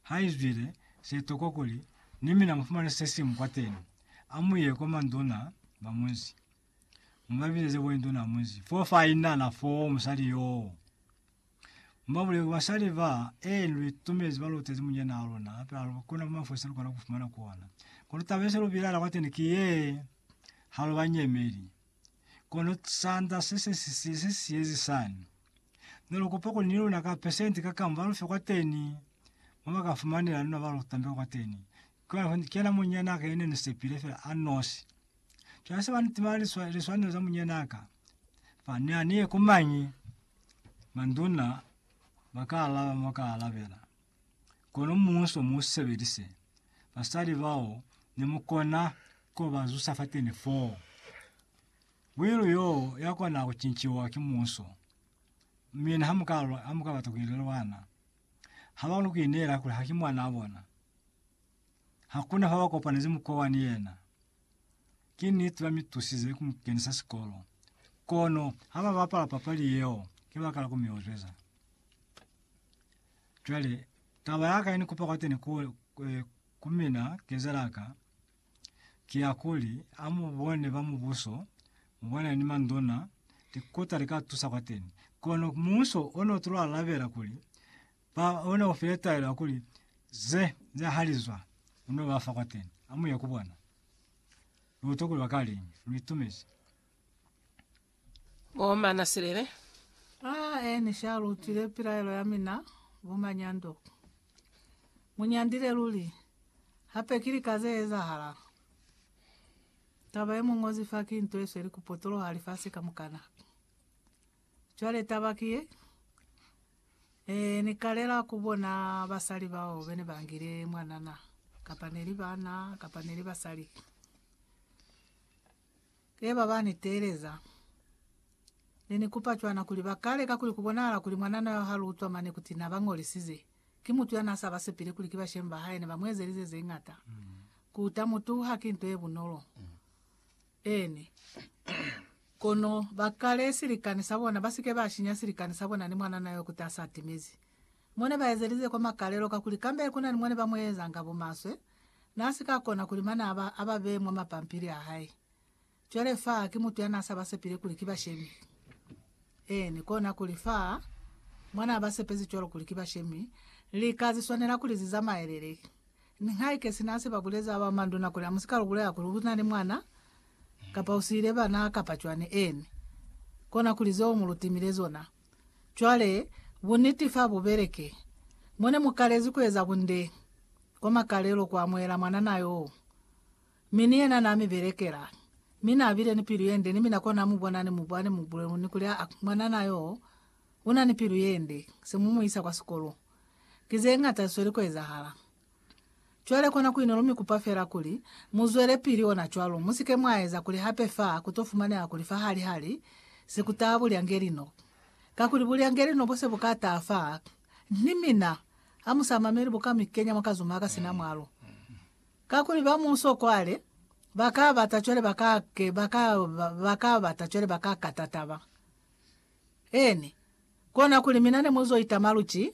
Ha izwile se tokwa kuli ni mina mufumane se simu kwateni, amuye kwa manduna ba munzi. Mubabizeze bo induna ya munzi fo fa inala fo musali yoo. Mubabulele kuli basali ba ee lu itumezi ba lutezi munyina wa luna hape ha lu kuna kuma fo se lukona kufumana ku ona. Kono taba yese lu bilaela kwateni ki yee, ha lu ba nyemeli. Kono sanda se se si si se siyezi sani. Ne lu kupa kuli ni luna ka pesenti ka kamu ba lu fe kwateni, mo ba ka fumanela luna ba lu tambela kwateni. Cwale ho ni kena munyana ka yene ni sepile fela a nosi. Cwale se ba ni timela liswa, liswanelo za munyana ka. Fa ni a ni ye ku mañi? Manduna ba ka alaba mo ka alabela. Kono muuso mu sebelise basali bao ne mu kona ku ba zusa fateni foo. Wilu yoo ya kona ku cinciwa ki muuso. Mina ha mu ka, ha mu ka bata ku ilela bana, ha ba koni ku ineela kuli ha ki mwanaa bona. Hakuna fa ba kopanezi mukowa ni yena. Ki niti ba mi tusize ku mu kenisa sikolo, kono ha ba bapala papali yeo ki baka la ku mi ozweza. Cwale, taba ya ka ye ni kupa kwateni ku, ku mina, kezela ka, ki ya kuli, a mu bone ba mubuso, mu bone ni manduna, likota li ka tusa kwateni. Kono mubuso o ne u tulo alabela kuli, ba, o ne u file taelo ya kuli, Ze, ze ha li zwa, u n'o ba fa kwateni. Amuye ku bona. Lu utwa kuli ba ka liñi. Lu itumezi. Bo mana silele. A e ni sha lutile pilaelo ya mina, bo manyando. Mu nyandile luli. Hape ki lika ze ezahala. Taba ye mu ñozi fa ki nto ye sweli ku potoloha lifasi kamukana. Cwale taba ki ye, e ni kalela ku bona basali bao bene ba ngile mwanana, kapa neli bana, kapa neli basali. Leba ba ni teeleza. Ne ni kupa cwana kuli ba kale kakuli ku bonahala kuli mwanana yo ha lu utwa mane kuti na ba ngolisize, ki mutu ya n'a sa ba sepile kuli ki bashemi ba hae ne ba mu ezelize ze ñata. Ku uta mutu haki nto ye bunolo. Eeni. Kono ba kale silikani sa bona, ba si ke ba shinya silikani sa bona ni mwanana yo kuti a sa timezi. Mo ne ba ezelize kwa makalelo kakuli kambe ku na ni mo ne ba mu ezanga bumaswe, Na si ka kona kuli manaba a ba bee mwa mapampili a hae. Cwale fa ki mutu ya na sa ba sepile kuli ki bashemi. Eeni, kona kuli fa mwa na ba sepezi cwalo kuli ki bashemi, lika zi swanela kuli zi zamaelele. Ni haike sina se ba buleza ba manduna kuli amusika lu bulela kuli u na ni mwana, kapa u siile bana, kapa cwani, eeni, kona kuli zeo mu lu timile zona. Cwale, buniti fa bu beleke. Mo ne mu kalezi ku eza bunde, kwa makalelo, ku amuhela mwanana yoo. Mi ni yena na mi belekela. Mi na bile ni pilu ye nde, ni mina kona mu bona ni mu bwa, ni mu bulelu, ni kuli, A, mwanana yoo, una ni pilu ye nde, se mu mu isa kwa sikolo. Ki ze ñata zisweli ku ezahala. Cwale kona kuino lu mi kupa fela kuli mu zwelepili ona cwalo, mu sike mwa eza kuli hape fa ku to fumaneha kuli fa hali hali se ku taha bulyangeli no. Kakuli bulyangeli no bo se bu ka taha fa Ni mina, ha mu sa mameli bu ka mi kenya mwa kazuma ka sina mwalo. Kakuli ba muso kwale ba ka bata cwale ba ka ke, ba ka, ba ka bata cwale ba ka kata taba. Eeni, kona kuli mina ne mu zo itama lu ki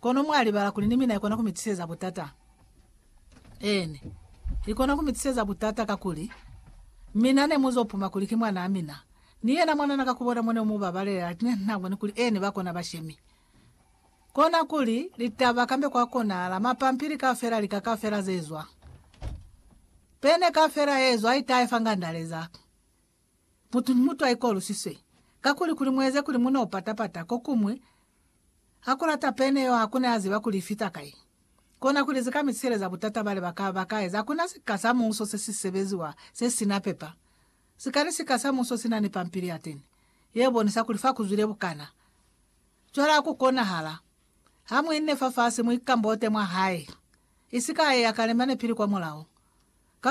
Kono mwa libala kuli ni mina ikona ku mi tiseza butata? Eeni, ikona ku mi tiseza butata kakuli mina ne mu zo puma kuli ki mwanaa mina. Ni yena mwanana ka ku bona mo ne mu ba balela lati ne na boni kuli eeni ba kona bashemi. Kona kuli litaba kambe kwa konahala mapampili kaufela lika kaufela ze zwa, pene kaufela ye zwa itaye fa ngandaleza. Mutu ni mutu a ikolusiswe, kakuli kuli mueze kuli mu n'o pata-pata. Kokuñwi, ha ku lata pene yeo ha ku ne a ziba kuli i fita kai. Kona kuli ze ka mi siheleza butata bale ba ka ba ka eza. Haku na sika sa muuso se si sebeziwa se si na pepa. Sika ni sika sa muuso si na ni pampili ya teni ye bonisa kuli fa ku zwile bukana. Cwale ha ku konahala, ha mu inne fafasi, mu ikambote mwa hae, isi ka a eya ka lemane pili kwa mulao.